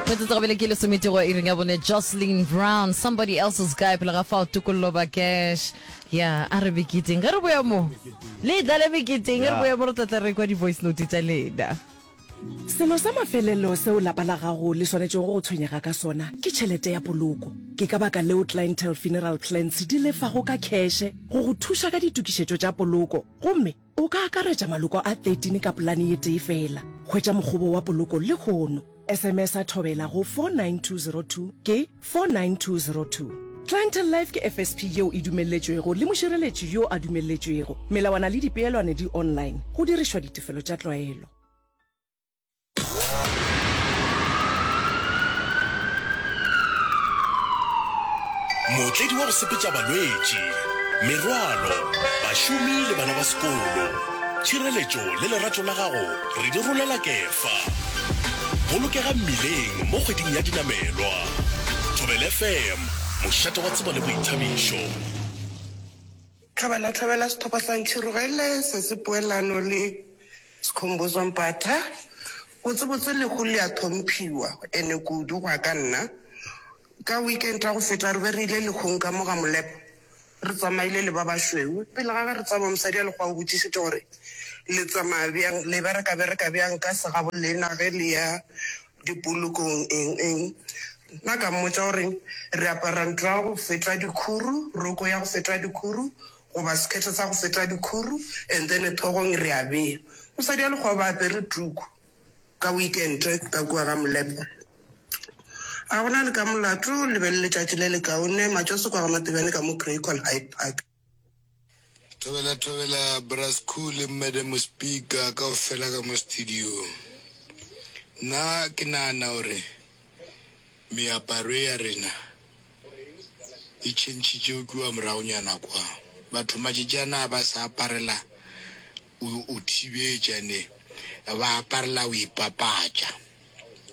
metsotso go bele ke lesomete go iring ya bone jocelyn brown somebody else's guy pele ga fao tokololo ba cash ya a re beketeng ge re boya mo le tla le beketeng ge re boya mo re tlatla re kwa di-voice note tsa lena Selo sa mafelelo seo lapa la gago le swanetšego go tshwenyega ka sona ke tšhelete ya poloko. Ke ka baka leo Clientele Funeral Plans di lefago ka kheshe go go thuša ka ditokišetšo tša poloko gomme O ka akaretša maloko a 13 ka polane ye tee feela. Hwetša mokgobo wa poloko lehono. SMS-a thobela go 49202 ke 49202. Clientele Life ke FSP yeo e dumelletšwego le mošireletši yo a dumelletšwego. Melawana le dipeelwane di online, go dirišwa ditefelo tša tlwaelo. Mootledi wa go sepetša balwetši, merwalo, bašomi le bana ba sekolo. Tšhireletšo le lerato la gago re di rolela Kefa. Bolokega mmileng mo kgweding ya dinamelwa. Thobela FM, mošate wa tsebo le boithabišo. Tlhabana Tlhabela Sethokgwa sa Ntšhirogele se se poelano le. Skhumbuzo Mpata, Botsebotse lehu le a thomphhiwa, ene kudu go ya ka nna. Ka weekend ya go feta re be re ile lehung ka mo ga Molepo, re tsamaile le ba bašweu. Pele ga ge re tsamaya mosadi ya Lekgowa o botšišitše gore le tsamaya bjang, le bereka-bereka bjang ka segabo lena ge le ya dipolokong eng-eng. Nna ka mmotša gore re apara ntlo ya go feta dikhuru, roko ya go feta dikhuru, Goba sekhethe sa go feta dikhuru and then tlhogong re a bea. Mosadi wa lekgoba a apere tuku ka weekend ka kua ga Molepo. A go na le ka molato, le be le letšatši le lekaone matšoso kwa ga Matebane ka mo Greycon Hyde Park. Thobela thobela Bra Skhoo le Madam Speaker kaofela ka mo studio-ng. Nna ke nahana hore. Meaparo ya rena e tšhentšhitše go kua moragonyana kwa. Batho matšatši a na ba sa aparela go go thibetša ne, ba aparela go ipapatša.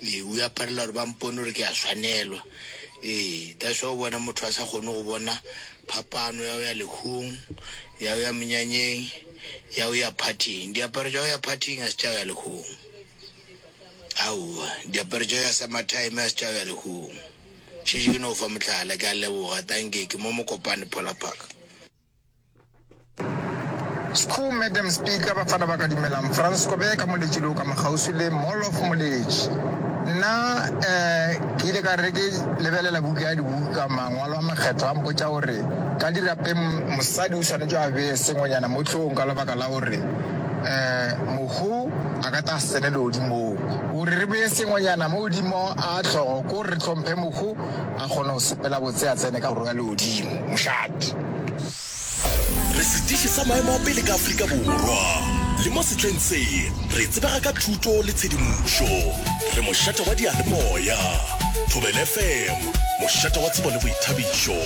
Ee, o aparela gore ba mpone gore ke a swanelwa. Ee, that's why o bona motho a sa kgone go bona phapano ya go ya lehung, ya go ya menyanyeng, ya go ya party-ing. Diaparo tša go ya party-ing ga se tša go ya lehung. Aowa, diaparo tša ya summertime a se tša ya lehung. Šetše ke no fa mohlala, ke a leboga, tanki, ke mo Mokopane Polar Park. Skhuu, Madam Speaker, Bafana ba ka dumelang, Frans Kobe ka Moletši le o ka mo kgauswi le Mall of Moletši. Nna um ke ile ka re ke lebelela buka ya dibuka, mangwalo a makgetho a mpotša gore ka dirapeng mosadi o swanetše a bee sengwenyana mo hlogong ka lebaka la gore Mohu a ka ta sele legodimong. Gore re bee sengwenyana mo godimo a hlogo ko re hlomphe Mohu a kgone go sepela botse a tsene ka Borwa ya Legodimo. Mošate. Re setiši sa maemo a pele ka Afrika Borwa le mo sehleng se. Re tsebega ka thuto le tshedimošo. Re mošate wa diyalemoya. Thobela FM, mošate wa tsebo le boithabišo.